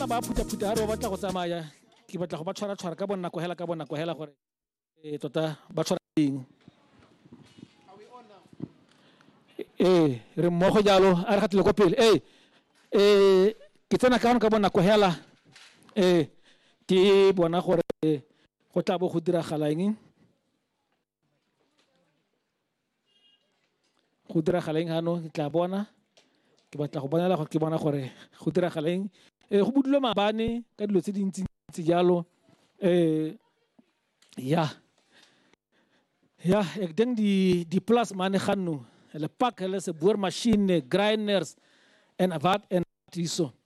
tla ba phutha-phutha ha re ba batla go tsamaya ke batla go ba tshwara-tshwara ka bonako hela ka bonako hela gore e tota ba tshwara eng ee re mmogo jalo a re gatile ko pele ee ee ke tsena ka ka bonako hela ee ke bona gore go tla bo go diragala eng Go diragala eng ano ke tla bona ke batla go bonela gore ke bona gore go diragala eng. Go budule maabane ka dilo tse dintsi-ntsi jalo ya ek dink di-plus mane ga nno, hulle pak, hulle se boormasjiene, grinders en wat en wat hierso.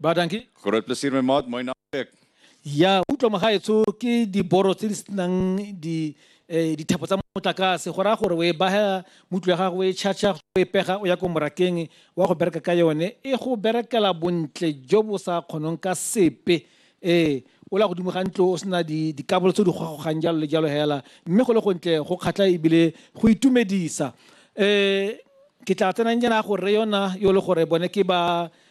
Ba dankie. Groot plezier my maat, mooi naweek. Ya utlwa mogaetsho ke diboro tse di senang di eh, dithapo tsa motlakase go raya gore o e baha mutlo ya gago o e charge o e pega o ya ko morakeng wa go bereka ka yone e go berekela bontle jo bo sa kgonong ka sepe ee o la godimo ga ntlo o sena di- dikabolo tse di gogogang jalo le jalo hela mme go le gontle go kgatlha ebile go itumedisa um ke tla tsenang jana go re yona yo le gore bone ke ba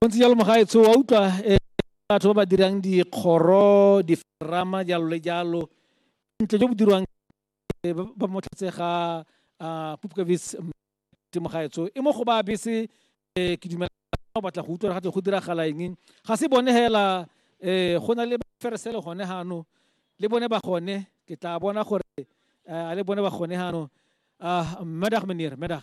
bontsi jalo mogaetsho wa utlwa um batho ba ba dirang dikgoro diferama jalo le jalo ntle jo bo dirwang ba motlhatse ga um pupkavis mogaetsho e mo go ba bese um ke dumela o batla go utlwa ga tle go diragala eng ga se bone fela um go na le feresele gone gano le bone ba gone ke tla bona gore a le bone ba gone gano um medag menir medag